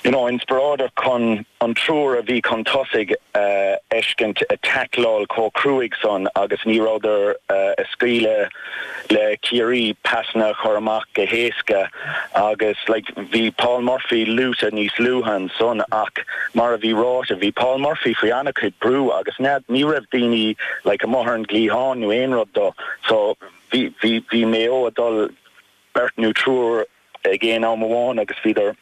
you know, inspioráideach chun an triúr a bhí chun tosaigh a fheiscint a' taicleáil chomh cruaidh san agus ní rabhadar a' scaoileadh le Ciarraí, pasanna a chur amach go héasca agus like, bhí Paul Murphy luaite níos luaithe ansan, bhí, mar a bhí ráite, bhí Paul Murphy faoi ana-chuid brú agus nead, ní raibh daoine like amuigh ar an gcliathán nó aon rud do so bhí, bhí, bhí Mayo a' dul. beirt nó triúr ag éinne amháin agus bhíodar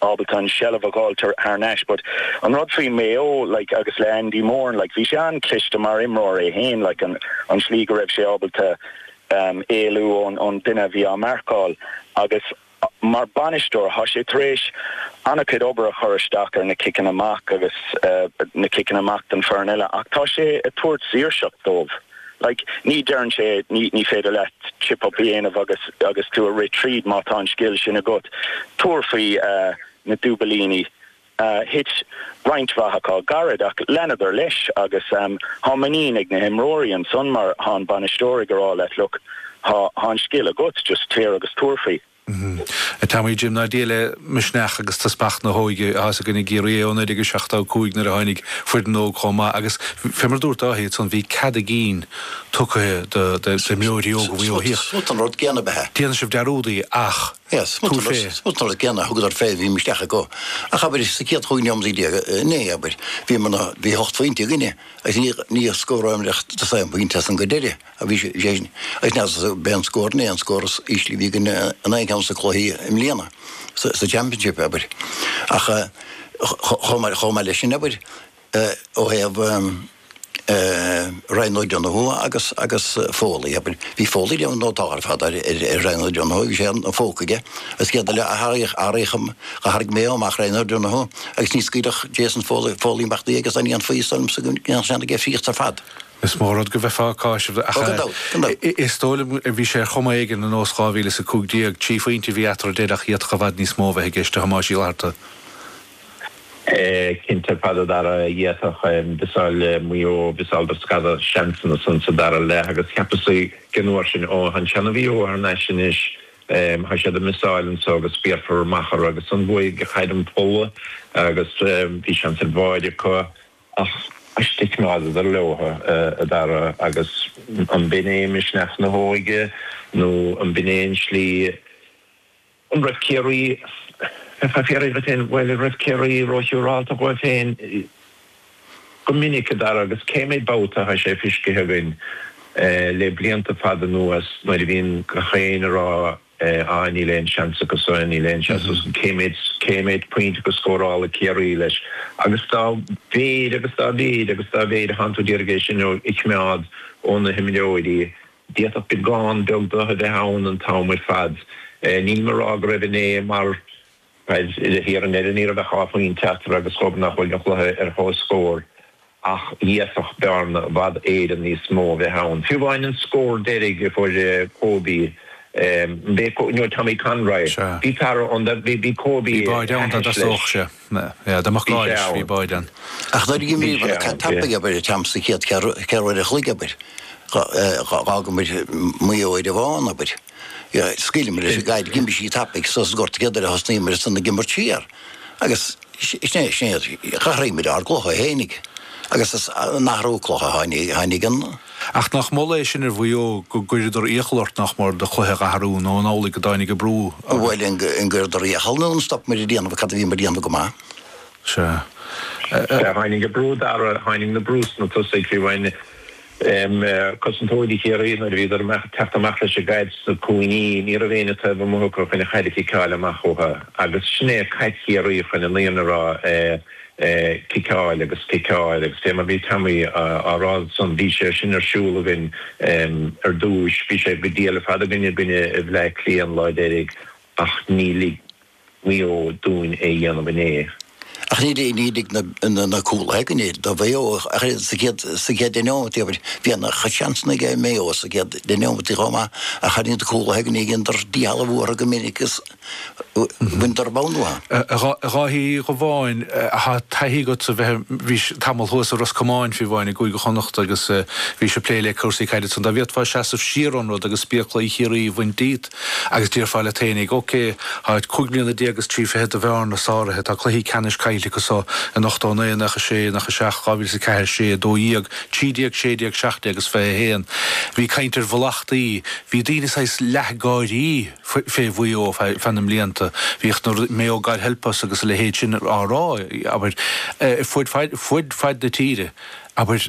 ábalta an tseilbh a dh'fháil thar n-ais but an rud faoi Maigh Eo like agus le Andy Moran like bhí sé an-chliste mar imreoir é féin like an slí go raibh sé ábalta ehm éalú ón ón duine a bhí á marcáil agus mar bhainisteoir thá sé tar éis an-chuid obair a chur isteach ar na ciceanna amach agus eh na ciceanna amach don foireann eile ach tá sé ag tabhairt saoirseacht dóibh. Like, ní deireann sé ní féidir leat chip up a dhéanamh agus agus tú a rith tríd má tá an scil sin agat. Tabhair faoi na dúbailíní. Thit roinnt mhaith acu gairid ach leanadar leis agus thá muinín ag na himreoirí ansan mar thá an bainisteoir ag rá leat look, thá an scil agat, just téir agus tabhair faoi. Tá, moladh le Dia le misneach agus teaspach na hóige a shásamh againn ag iarraidh é ó 1975 nuair a tháinig foireann óg chomh maith agus, bhí mar a dúirt Dáithí ansan, bhí cead a gcinn tugtha do imreoirí óga faoi ó thíos. Smut an rud céanna beatha. Déanann sibh dearúdaí ach tabhair fé. Smut an rud céanna a thugadar fé, bhí misneach acu. Ach abair, sa chéad chúig nóiméad déag, inné, abair, bhí mar ná, bhí ocht bpointe againne agus ní, ní scóráimid ach de saghas an pointe as sin go deireadh. a bhí sé sin ag snas as beagán scór, naoi scór is ísle a bhí againn in aon cheann de na cluichí i mbliana sa Championship, abair. Ach chomh maith leis sin, abair, ó thaobh Ryan O'Donoghue agus agus Foley, abair, bhí Foley ag déanamh go nótáilte ar fad ar Ryan O'Donoghue, bhí sé ina phóca aige agus iad uile a tharraing Mayo amach, Ryan O'Donoghue agus ní scaoilfeadh Jason Foley imeacht di agus dá ndéanfaí, is dóigh liomsa go ndéanfadh sé an oiread fríosta ar fad. Is mó rud go bheithfeá ag cáiseamh ach is dóigh liom a bhí sé ar chuma éigin i nós 2015. Trí phointe a bhí eatarthu d'fhéadfadh d'fhéadfadh i bhfad níos mó a bheith i gceist a Thomáis Uí Fhlatharta. Cinnte ar fad a Dara d'fhéadfadh Mhiseáil Maigh Eo, mhiseáladar scata seansanna ansan sa dara leath agus cheapas an uair sin ó thá an seana Mhaigh Eo thar n-ais anois tá siad ag miseáil anso agus béarfar amach orthu agus ansan chuaigh sé i gcoinne an phóla agus bhí seans ar bháid acu. Ach stickeáladar leotha, a Dara, agus an b'in é misneach na hóige, nó an b'in é an slí an raibh Ciarraí, bheifeá ag fiafraí dhuit féin, bhuel, an raibh Ciarraí ró-shiúrálta dhóibh féin go minic, a Dara, agus cé méid babhta atá sé fiscithe againn le blianta fada anuas nuair a bhíonn gach éinne a rá, Eh, aye, níl aon seans acu sa, níl aon seans acu san. Cé mhéid, cé mhéid pointe go scórálfadh Ciarraí leis? Agus dá mhéid, agus dá mhéid, agus dá mhéid a cheapann tú d'fhéadfá é sin a choimeád ó na himreoirí, d'fhéadfadh beagán beag de a bheith ann an t-am ar fad. Eh, nílim a rá go raibh inné mar. Cad is fíor, ar ndóigh, ní raibh ach dhá phointe eatarthu agus dóbair nach bhfuil an cluiche ar chomhscór ach d'fhéadfadh bearna i bhfad níos mó a bheith ann. Fiú amháin an scór deiridh a fuair Kobe, b'é, nó Tommy Conroy, bhí fear ann, bhí Kobe thairis leis. Bhí sé ann. Ach d'éirigh linn imirt go tapaidh abair sa chéad cheathrú uair an chloig, abair. Dh'fhágamar Maigh Eo ar an bhfán, abair. scaoileamar leis an gcaid, d'imigh sí tapaidh suas an gort cad ina thaobh ar thosnaíomar ansan ag imirt siar agus sea, sea, d'athraíomar ár gcluiche fhéinig agus in athrú cluiche a tháinig ann. Ach nach moladh é sin ar Mhaigh Eo, go gcuireadar iachall ort nach mór do chluiche a dh'athrú nó an amhlaidh go dtáinig an brú orthu? Bhuel, an gcuireadar iachall nó an stopamar a dhéanamh cad a bhíomar a dhéanamh go maith? Sea. Sea, tháinig an brú dar ndóigh, tháinig an brú ós na tosaithe faoi bhun Cosantóirí Chiarraí, nuair a bhíodar ag teacht amach leis an gcaid sna cúinní, ní raibh éinne taobh amuigh acu chun an chaid a chiceáil amach uathu agus sin é caid Chiarraí chun an fhírinne a rá ciceáil agus ciceáil agus fé mar bhí Tommy á rá ansan bhí sé sin ar siúl againn ar dtúis, bhí sé go diail ar fad againn i gcoinne Bhleá Cliath an lá deiridh ach níor lig. Maigh Eo dúinn é a dhéanamh inné. Ach ní lig na cúlaithe againn é, do Mhaigh Eo, ach oiread. Sa chéad deich neomataí, abair, bhí an oiread seansanna ag Maigh Eo sa chéad deich neomataí chomh maith ach tháinig na cúlaithe againne, dhéanadar díshealbhú orthu go minic agus bhaineadar an bonn uathu. A Dháithí Uí Dhubháin, tá taithí agatsa bheith, bhís tamall thuas i Ros Comáin, fiú amháin, i gCúige Chonnacht agus bhís ag plé le cúrsaí caide ansan. Dá bhféadfá seasamh siar ón rud agus spéaclaí Chiarraí a bhaint díot, Agus déarfá leat fhéinig, OK, tá cúig mbliana déag is trí fichid de bhearna sáraithe, tá cluichí ceannais caillte acu so, in ochtó a naoi, i nócha sé, nócha seacht, dhá mhíle is a ceathair is sé, a dó dhéag, trí déag, sé déag, seacht déag is fiche a haon. Bhí caint ar mhallachtaí, bhí daoine saghas leath ag gáirí fé Mhaigh Eo feadh na mblianta, bhíodh na rudaí, Mayo God Help Us agus a leithéid sin á rá, abair, ar fuaid faid na tíre, abair.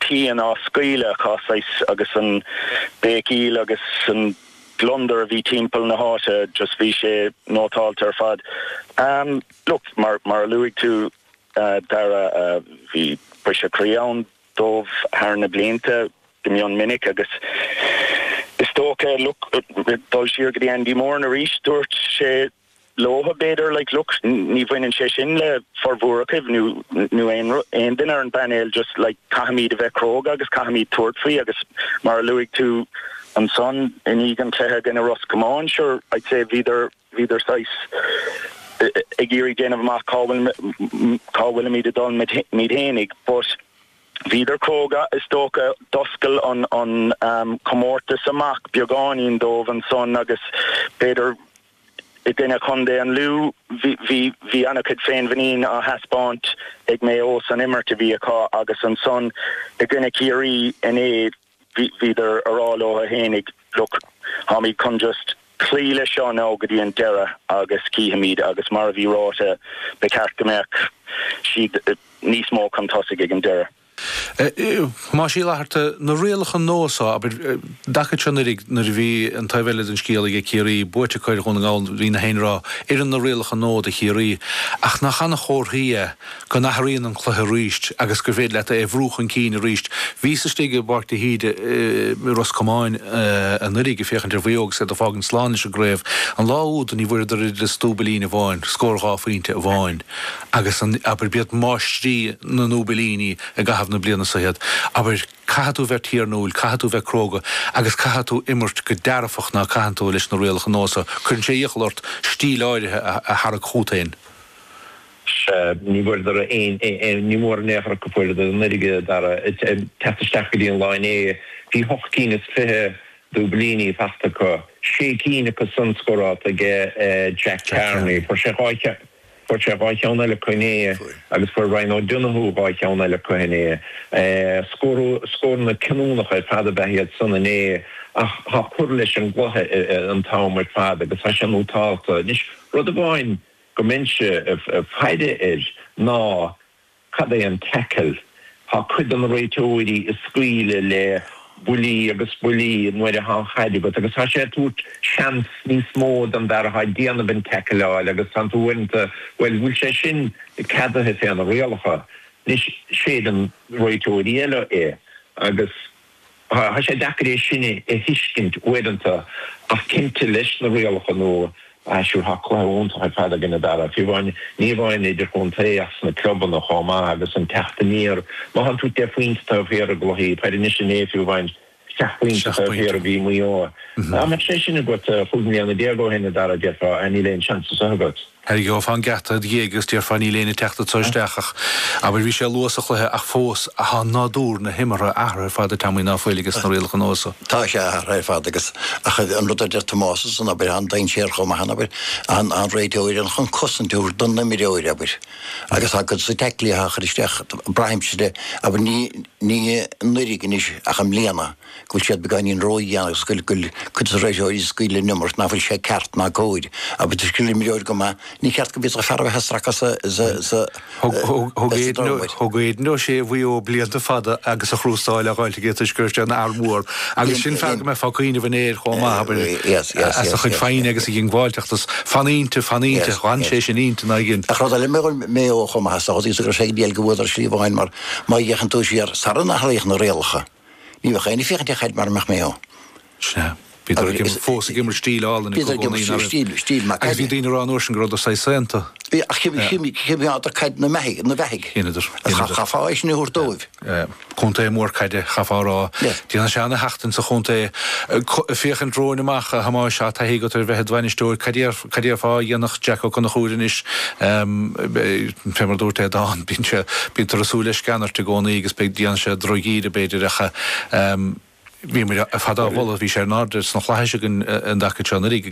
pian á scaoileadh acu, saghas, agus an béicíl agus an gliondar a bhí timpeall na háite, just bhí sé nótáilte ar fad. Look, mar, mar a luaigh tú, a Dara, bhí briseadh croí ann dóibh thar na blianta, go mion minic, agus is dócha, look, dul siar go dtí Andy Moran arís, dúirt sé, leobhtha b'fhéidir like look ní bhaineann sé sin le formhór agaibh nó nó aon rud aon duine ar an bpainéal just like caithfimíd a bheith cróga agus caithfimíd tabhairt faoi agus mar a luaigh tú ansan i ndiaidh an cluiche i gcoinne Ros Comáin sure I'd say bhíodar bhíodar saghas ag iarraidh déanamh amach cá bhfuil cá bhfuilimíd ag dul muid fhéinig but bhíodar cróga is dócha d'oscail an an um, comórtas amach beagáinín dóibh ansan agus b'fhéidir i gcoinne Chontae an Lú. Bhí an-chuid féinmhuinín á thaispeáint ag Mayo as an imirt a bhí acu agus ansan i gcoinne Chiarraí inné bhíodar ag rá leo fhéinig, look, táimid chun just cloí leis seo now go dtí an deireadh agus cífimid agus mar a bhí ráite ba cheart go mbeadh siad níos mó chun tosaigh ag an deireadh. Thomáis Uí Fhlatharta, na rialacha nua so, abair, an taca seo anuraidh, nuair a bhí an taobh eile den scéal age Ciarraí, buaite acu ar Dhún na nGall, bhí gach éinne ag rá, oireann na rialacha nua do Chiarraí, ach nach an-chomhartha é go n-athraíonn an cluiche arís agus gur féidir leat é a bhrú chun cinn arís. Bhíos istigh i bPáirc de hÍde i Ros Comáin anuraidh ag féachaint ar Mhaigh Eo agus iad ag fágaint slán leis an gcraobh. An lá úd ní bhfuaireadar oiread is dúbailín amháin, scór dhá phointe amháin. Agus an, abair, b'iad máistrí na ndúbailíní i gcaitheamh na bliana so iad, abair, caithfidh tú bheith tiarnúil, caithfidh tú bheith cróga agus caithfidh tú imirt go dearfach ná caithfidh tú leis na rialacha nua so. Cuireann sé iachall ort stíl áirithe a tharrac chút fhéin. Sea, ní bhfuaireadar aon, ní mórán in aon chor acu a fuaireadar anuraidh ach ag teacht isteach go dtí an lá inné. Bhí hocht gcinn is fiche dúbailíní fachta acu, sé cinn acu san scórálta age Jack Carney. Fuair sé dhá cheann. Fuair sé dhá cheann eile acu inné agus fuair Ryan O'Donoghue dhá cheann eile acu inné. Scóranna cinniúnacha ar fad ab ea iad san inné atá ag cur leis an gcluiche an t-am ar fad agus tá sé nótálta. Anois, rud amháin go mbeinnse ag faire air ná, Cad é an tackle? Tá cuid de na réiteoirí ag scaoileadh le buillí agus buillí nuair atá an chaid agat agus tá sé ag tabhairt seans níos mó don bhfear atá ag déanamh an tackle a fháil agus tánn tú uaireanta, bhuel, bhfuil sé sin ceadaithe fé na rialacha? Anois, séideann réiteoirí eile é agus. Tá sé deacair é sin a thuiscint uaireanta ach cinnte leis na rialacha nua so tá cluiche iontach ar fad againn a Dhara, fiú amháin, ní amháin idirchontae ach sna clubanna chomh maith agus an teacht aniar. Má thánn tú deich bpointe taobh thiar i gcluichí peile anois, inné fiú amháin seacht bpointe taobh thiar a bhí Maigh Eo. Dá mbeadh sé sin agat chúig mbliana déag ó shin a Dhara, déarfá níl aon seans anso agat. Tharraingeofá an geata id' dhiaidh agus déarfá níl éinne ag teacht anseo isteach ach, abair, bhí sé luath sa chluiche ach fós tá nádúr na himeartha athraithe ar fad a Thomáis ná fuil aiges na rialacha nua so. Tá sé athraithe ar fad agus, ach an rud a deir Tomás ansan, abair, an dainséar chomh maith, abair, an réiteoir, ann chun cosaint a thabhairt don imreoir, abair, agus tá cuid des na taiclí á chur isteach, braithimse de, abair, ní anuiridh anois ach i mbliana. go bhfuil siad beagáinín ródheas agus go bhfuil cuid de na réiteoirí ag scaoileadh an iomarca ná fuil sé ceart ná cóir. Agus toisc gur imreoir go maith, ní ceart go bhféadfadh fear a bheith ag stracadh sa dóla, mar thug Aidan O'Shea Mhaigh Eo blianta fada agus an chrústáil á fháilt aige toisc go raibh sé ina fhear mór agus sin fear go mbeifeá ag cuimhneamh inné air chomh maith, abair, as a chuid foighne agus a dhiongbháilteacht is. Fan inti, fan inti, fan sé sin inti ná igin. Ach rud eile a mhol Mayo chomh maith, sa gcaoi is go raibh sé ag déileáil go bhfuadar slí amháin mar má fhéachann tú siar, sara n-athraíodh na rialacha, Ní bheadh éinne ag féachaint ar chaid mara mbeadh Maigh Eo ann. Sea. Bhíodar fós ag imirt stíl álainn ag i gcónaí, nár imir? Stíl maith. Agus bhí daoine ag rá an uair sin go rabhadar saghas saonta. Bhí, ach choimeádadar caid ina beathaidh, ina beathaidh. Dheineadar. Chaithfeá é sin a thabhairt dóibh. Contae mór caide, chaithfeá a rá. Déanann sé ana-sheachtain sa chontae. Féachaint romhainn amach, a Thomáis, tá taithí agat ar bheith id bhainisteoir. Cad é ar. Cad déarfá a dhéanfaidh Jack Ó Conchúir anois, fé mar a dúirt Aodhán, bíonn sé, bíonn tú ag súil le sceanairt i gcónaí agus beidh, dhéanfaidh sé droch-dhíth ar b'fhéidir ach bhíomair ar fad á mholadh, bhí sé in airde sna Flaithis againn an dtaca seo anuiridh.